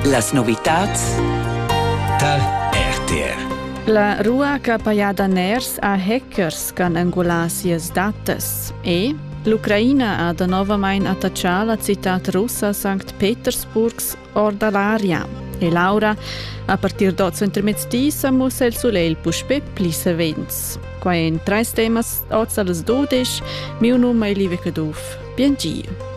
Las novitads tar RTR. La rua ch'ha pajà daners a hackers ch'han engulà sias datas e L'Ucraina ha danovamain attaccà la citad russa Sankt Petersburgs or da l'aria. E l'aura, a partir d'oz intermezdi sa mussa il sulegl puspè pli savens. Quai en trais temas oz a las 12. Mio num è Live Caduff. bientgiu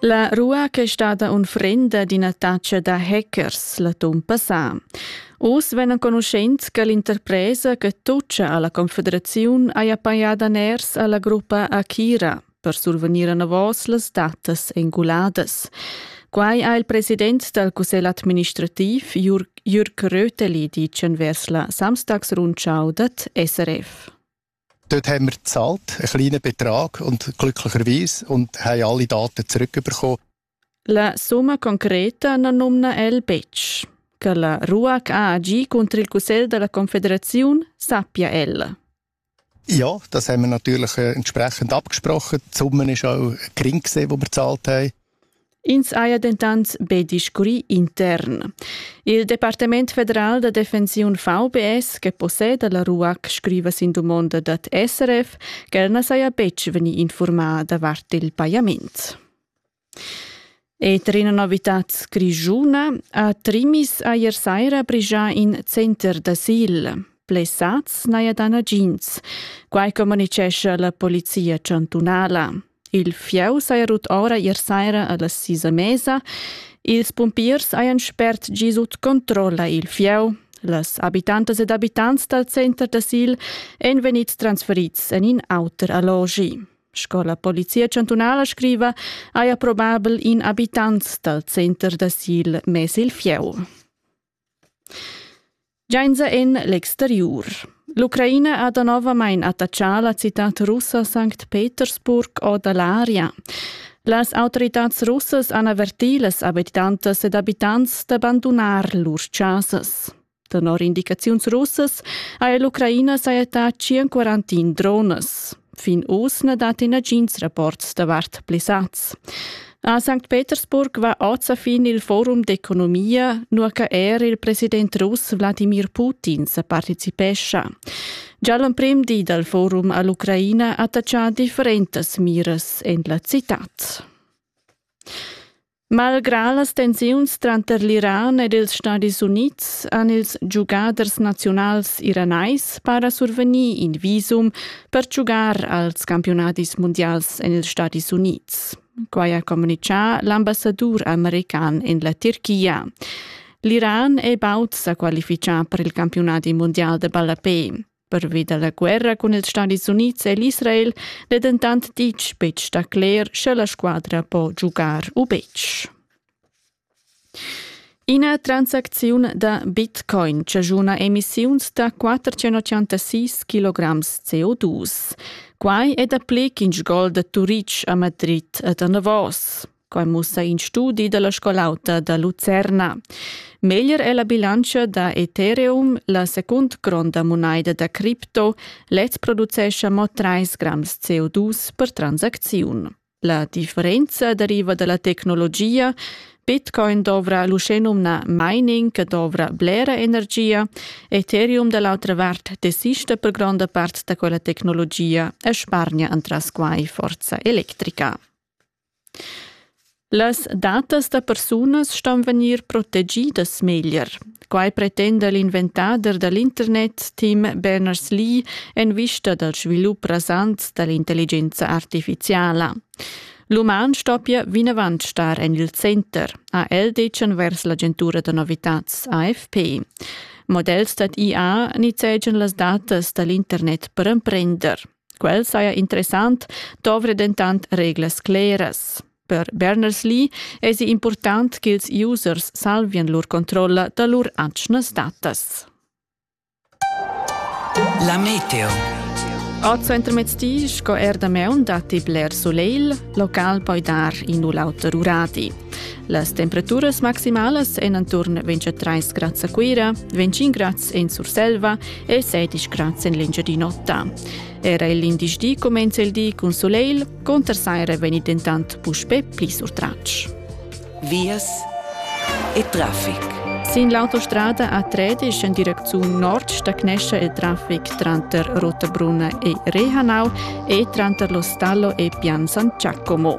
La rua che è stata unfrenda d'ina taccia da hackers l'atun passà. Oz vegn enconuschent che l'interpresa che toccia alla Confederaziun haja pajada ners alla gruppa Akira. per survegnir enavos las datas enguladas. Quai ha il president dal cussegl administrativ Jürg Röteli ditg vers la Samstagsrundschau dat SRF. Dort haben wir gezahlt, einen kleinen Betrag und glücklicherweise und haben alle Daten zurückbekommen. La summa concreta na numna el betg. Che la RUAC ha agì cunter il cussegl da la confederaziun sappia el. Ja, das haben wir natürlich äh, entsprechend abgesprochen. Die Summe ist auch gering gesehen, die wir gezahlt haben. Ins haja dentant be discurrì intern. Il Departement federal da defensiun VBS, che posseda la RUAC, scriva sin domanda dad SRF ch'el na saja betg vegnì informada davart il pajament. Eter ina novitad grischuna ha Trimis eir saira brigià in center d'asil. Blessats n'haja dà nagins, quai communitgescha la polizia chantunala. Il fieu saja rut ora ier saira a las sis a mesa. Ils pumpiers hajan spert gi sut controlla il fieu. Las abitantas ed abitants dal center d'asil èn vegnids transferids en in auter allogi. Sco la Polizia chantunala scriva, haja probabel in abitant dal center d'asil mess il fieu. Giainza en l'exteriur. L'Ucraina ha danovamain attachà la citad russa Sankt Petersburg o da l'aria. Las autoritads russas han avertì las abitantas ed abitants d'abandunar lur chasas. Tenor indicaziuns russas haja l'Ucraina sajettà 141 drones. Fin oz na datti nagins rapports davart blessads. A St. Petersburg va oz a fin il forum d'economia, nua che er il president russ Wladimir Putin sa participescha. Già l'emprim di dal forum a l'Ucraina attaccia differentas miras en la citad. Malgrà las tensiuns tranter l'Iran ed ils Stadis Unids han ils giugaders naziunals iranais para survegnì in visum per giugar als campiunadis mundials en ils Stadis Unids. Quai ha communitgà l'ambassadur american en la Tirchia. L'Iran è baud sa qualifichà per il campiunadi mundial de ballapé. Pervi da la guerra cun ils Stadis Unids e l'Israel n'è dentant ditg betg da cler, sche la squadra po giugar u betg. Ina transacziun da Bitcoin chaschuna emissiuns da 486 kg CO2. Quai è dapli ch'in sgol da Turitg a Madrid e da Navos. Quai mussa in studi da la scol'auta da Lucerna. Meglier è la bilantscha da Ethereum, la secund gronda munaida da cripto. Lez producescha mo 3 grams CO2 per transacziun. La differenza deriva da la tecnologia. Bitcoin dovra l'uschenumna mining che dovra blera energia. Ethereum da l'autra vart desista per gronda part da quella tecnologia e spargna entras quai forza electrica. Las datas da persunas ston vegnir protegidas meglier. Quai pretenda l'inventader da l'internet Tim Berners-Lee en vista dal svilup rasant da l'intelligenza artifiziala. L'uman stoppia vinavant star en il center, ha el detg envers l'agentura da novitads AFP. Models dad IA nizzegian las datas da l'internet per emprender. Quel saja interessant, dovre dentant reglas cleras. Per Berners-Lee èsi impurtant ch'ils users salvien lur controlla da lur atgnas datas. La meteo. A Centromezdi sco er da meun datti bler soleil, local poi dar in u l'auter uradi. Las temperaturas maximalas èn intorno 23 grads a Cuira, 25 grads en Surselva e sedisch grads en l'Engiadin'Ota. Era l'indice di comenza il di cun soleil, conter saira vegni dentant puspè pli surtratg. Vias e traffic. Sin l'autostrada A13 in direcziun nord stagnesce il traffic tranter Rotabrunna e Rehanau e tranter lo stallo e Pian San Giacomo.